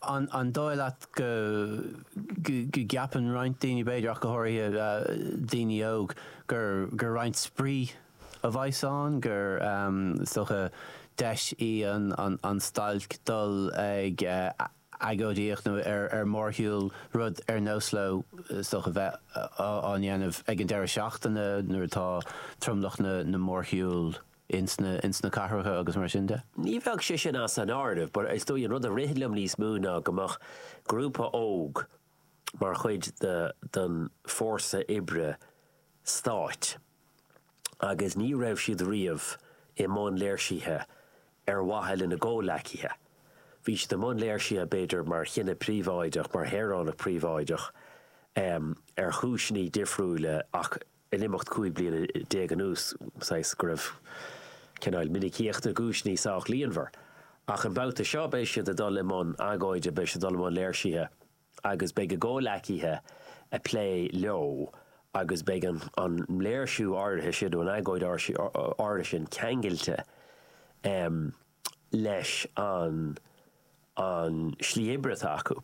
An dóigh leat go gceapann roinnt daoine, b'fhéidir, ach go háirithe daoine óga, gur roinnt spraoi a bheas ann, gur dócha deis í an stailc dul ag agóidíocht nó ar mórshiúl, rud ar nós leo, is dócha bheith á dhéanamh ag an deireadh seachtaine nuair atá tromlach na mórshiúl ins na cathracha agus mar sin de. Ní bheadh sé sin as an áireamh, but is dóigh an rud a rith liom níos mó ná go mbeadh grúpa óg mar chuid den Fórsa Oibre Stáit agus ní raibh siad riamh i mbun léirsithe ar mhaithe lena gcomhleacaithe. Bhí siad i mbun léirsithe b'fhéidir mar dhuine príobháideach, mar shaoránach príobháideach ar chúiseanna difriúla ach in imeacht 15 bliana anuas, saghas go raibh cineál minicíocht na gcúiseanna sách líonmhar. Ach an babhta seo beidh siad ag dul i mbun agóide, beidh siad ag dul i mbun léirsithe agus beidh a gcomhleacaithe ag plé leo agus beidh an léirsiú áirithe sin nó an agóid áirithe sin ceangailte leis an an slí oibre atá acu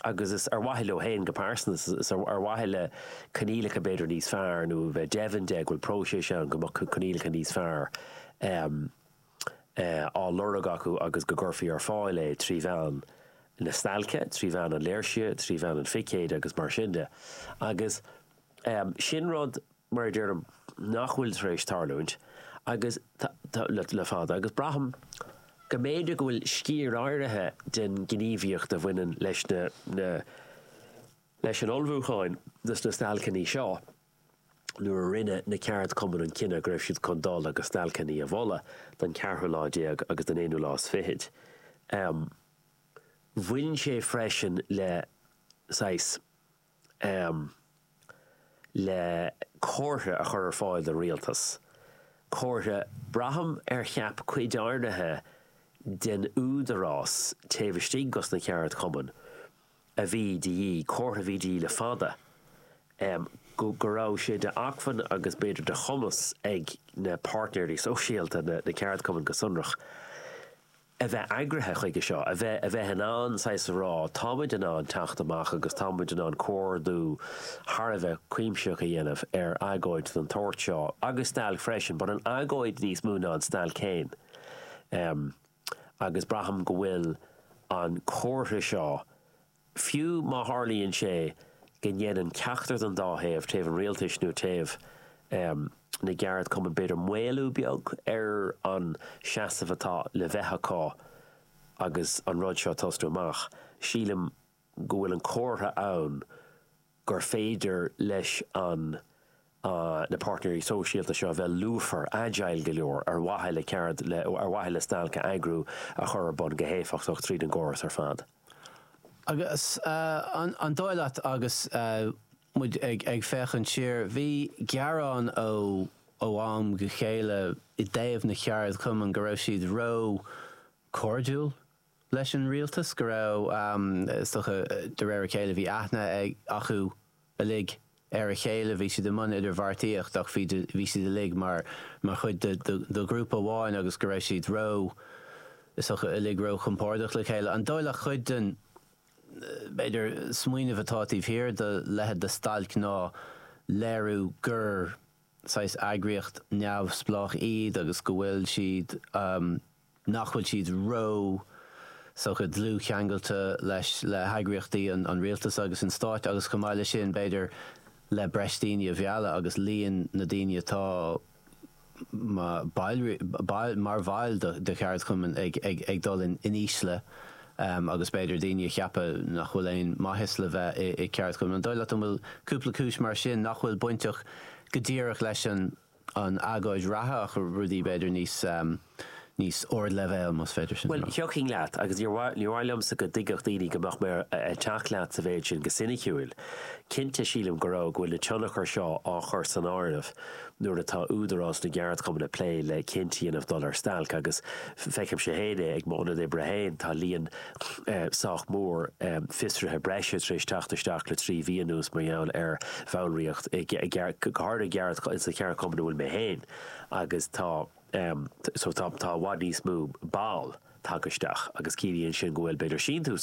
agus is ar mhaithe leo féin go pearsanta is ar mhaithe le coinníollacha b'fhéidir níos fearr nó a bheith deimhin de go bhfuil próiseas ann go mbeadh coinníollacha níos fearr á lorg acu agus go gcuirfí ar fáil é trí mheán na stailce, trí mheán an léirsithe, trí mheán an phicéid agus mar sin de. Agus. Sin rud, mar a deirim, nach bhfuil tar éis tarlúint agus, le fada agus braithim go mb'fhéidir go bhfuil sciar áirithe den ghníomhaíocht a bhaineann leis na, leis an ullmhúchán do na stailceanna seo nuair a rinne na ceardchumainn an cinneadh go raibh siad chun dul agus stailceanna a mholadh don cheathrú lá déag agus don aonú lá is fichid. Bhain sé freisin le saghas. am le comhartha a chur ar fáil don Rialtas, comhartha braithim ar cheap cuid áirithe den Údarás taobh istigh dos na ceardchumainn a bhí de dhíth, comhartha a bhí de dhíth le fada, am go raibh sé d'acmhainn agus b'fhéidir de chumas ag na páirtnéirí sóisialta na ceardchumainn go sonrach. a bheith eagraithe chuige seo, a bheith, a bheith in ann saghas a rá, táimid in ann teacht amach agus táimid in ann comhordú thar a bheith cuimsitheach a dhéanamh ar agóid den tsórt seo agus stailc freisin, but an agóid níos mó ná an stailc féin agus braithim go bhfuil an comhartha seo Fiú má tharlaíonn sé go ndéanann ceachtar den dá thaobh, taobh an rialtais nó taobh na gceardchumann, b'fhéidir, maolú beag ar an seasamh atá le bheith acu agus an rud seo ag tosnú amach, sílim go bhfuil an comhartha ann gur féidir leis na páirtnéirí sóisialta seo a bheith lúfar, agile go leor ar mhaithe le ceard le ar mhaithe le stailc a eagrú a chur ar bun go héifeachtach tríd an gcóras ar fad. Agus an dóigh leat agus muid ag féachaint siar, bhí gearán ó am go chéile i dtaobh na gceardchumann go raibh siad ró chairdiúil? leis an rialtas go raibh, is dócha, de réir a chéile, bhí aithne acu uilig ar a chéile, bhí siad i mbun idirbheartaíocht ach bhí, bhí siad uilig mar, mar chuid de ghrúpa amháin agus go raibh siad ró, is dócha, uilig ró chompordach le chéile. An dóigh leat cuid den, b'fhéidir, smaoineamh atá taobh thiar de leithéid de stailc ná léiriú gur saghas eagraíocht neamhspleách iad agus go bhfuil siad, nach bhfuil siad ró saghas dlúthcheangailte leis le heagraíochtaí an rialtas agus an stáit agus chomh maith le sin b'fhéidir le breis daoine a mhealladh agus líon na daoine atá mar bhaill de cheardchumainn ag dul in ísle agus b'fhéidir daoine a cheapadh nach bhfuil aon maitheas le bheith i gceardchumann. An dóigh leat go bhfuil cúpla cúis mar sin nach bhfuil bainteach go díreach leis an. an agóid reatha ach rudaí b'fhéidir níos níos ardleibhéal más féidir sin a rá. Bhuel, thiocfainn leat agus níor mhaith níor mhaith liomsa go dtuigfeadh daoine go mbeadh mé ag teacht leat sa mhéid sin go soiniciúil. Cinnte sílim go raibh go bhfuil na tionchair seo á chur san áireamh nuair atá Údarás na gCeardchumann ag plé le cinneadh a dhéanamh dul ar stailc agus feicimse féin é ag mo ionad oibre féin tá líon sách mór fiosruithe breise tar éis teacht isteach le trí mhí anuas mar gheall ar bhallraíocht, go háirithe i gceard, sa cheardchumann a bhfuil mé féin agus tá so tá tá i bhfad níos mó ball tagtha isteach agus ciallaíonn sin go bhfuil b'fhéidir síntiús,